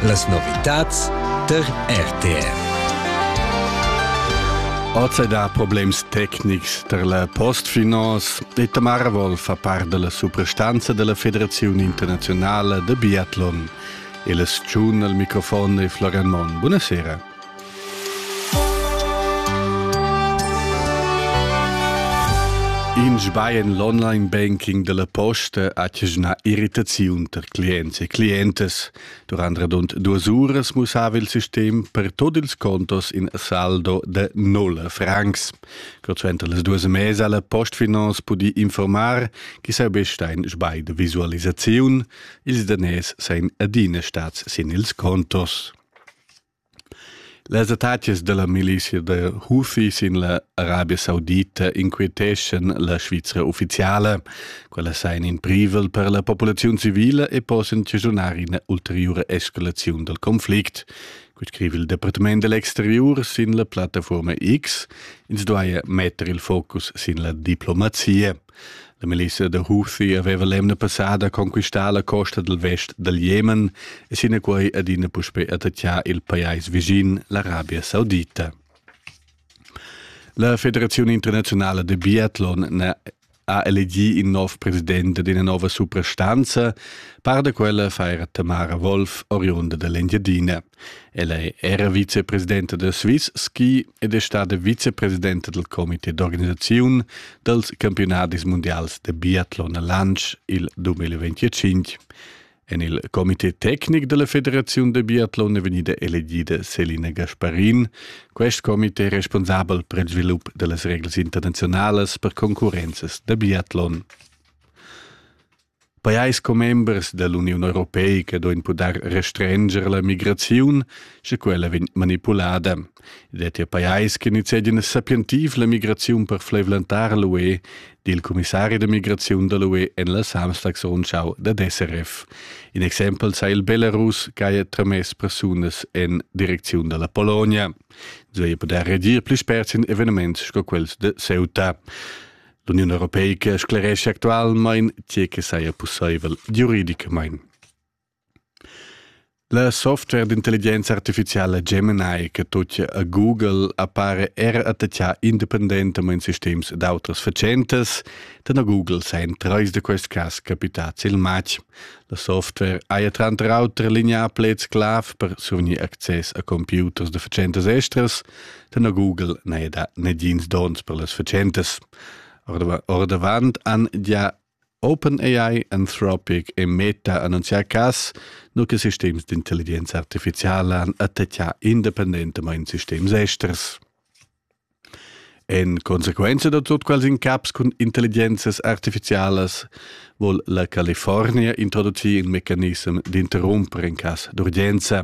Las novitads tar RTR. Oz da problems tecnics tar la postfinance e Tamara Wolf fa part della suprastanza della Federazione Internazionale de Biathlon. E le tschun al microfon e Florian Mon. Buonasera. In sbaien l'online banking della posta ha tgna irritaziun per clients e clientas. Durant radund duas uras mussava il sistem per tot ils contos in saldo de nulla francs. Cotschenta las duas mesa la postfinance pudi informar che saubesta in sbai de visualisaziun, ils danès sein adina stats sin ils contos. Las attacas dalla milizia da Hufi sin la Arabia Saudita inquieteschan la Svizra ufficiala. Quella sa in in privel per la populaziun civila e possan chaschunar ina ulteriura escalaziun dal conflict. Quei scrive il Departament dell'exterior sin la plattaforma X. Ins duaia metter il focus sin la diplomazia. La milissa da Houthi aveva l'emna passada conquistà la costa dal vest dal Jemen e sinaquai adina puspè attaccà il pajais vischin, l'Arabia Saudita. La Federazione internazionale de Biathlon ha elegì in nov president d'ina nova suprastanza, par da quella fa era Tamara Wolf, oriunda dell'Engiadina. El è era vicepresidenta da Swiss Ski ed è stada vicepresidenta dal comité d'organisaziun dals campiunadis mundials da biatlon a Lantsch il 2025. En il comité tecnic della Federaziun de Biathlon è vegnida elegida Selina Gasparin, quest comité responsabel per il svilup delle regles internazionales per concorrences da biathlon. Pajais commembers dall'Uniun europeica duein puder restrenscher la migraziun, sche quella vegn manipulada. Ed è pajais che nizegien sapientiv la migraziun per fleivlentar l'UE dil commissari da migraziun dall'UE en la Samstagsrundschau da SRF. In exempel sa il Belarus che ha tramess persunas en direcziun dalla Polonia. Zoi puder redir pli spert sin eveniments sco quels de Ceuta. L'Union Europeica scleresce actualmain tge che saja pussaivel giuridicamain. La software d'intelligenza artificiala Gemini che tuttia a Google appare era attachà independentamain sistems d'autras fatschentas, dan a Google sein trais da quest cas capitads il matg. La software haja tranter auter lineà pleds clav per survgnir access a computers da fatschentas estras, Tenor Google n'è da negins dons per las fatschentas. Ordavant han gia OpenAI Anthropic e Meta annunzià cas, nu che sistems d'intelligenza artificiala han attacchà independentamain sistems esters. En consequenza da tut quels incaps cun intelligenzas artificialas vuol la California introducir il mecanism d'interrumpere in cas d'urgenza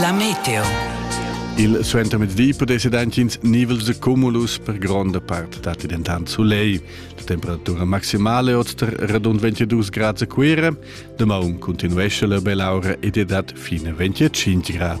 La meteo. Il suentermezdi pudess ins nivels de cumulus per gronda part datti dentant soleil. La temperatura maximale oz tar radund 22 grad a Cuira. Damaun continuesce la belaura ed è dat fine 25 grad.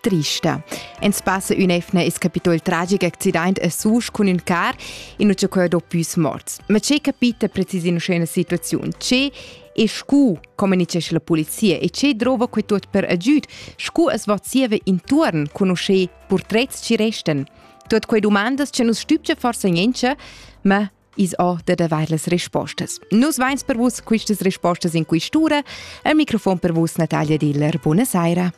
trista. En spasse ün'efna es capito il tragic accident a Susch cun ün car innuccia quai do püs morts. Ma che capita precis in scena situaziun? Ce e scu comunicesch la polizia e ce drova quei tot per agüd? Scu es vozieva intuorn conosce portrets ci resten? Tot quei domandas che nus stübge forsa niente, ma is ho da davar las rispostas. Nus vains per vus quistas rispostas in quistura. Al microfon per vus Natalia Diller. Buonasera.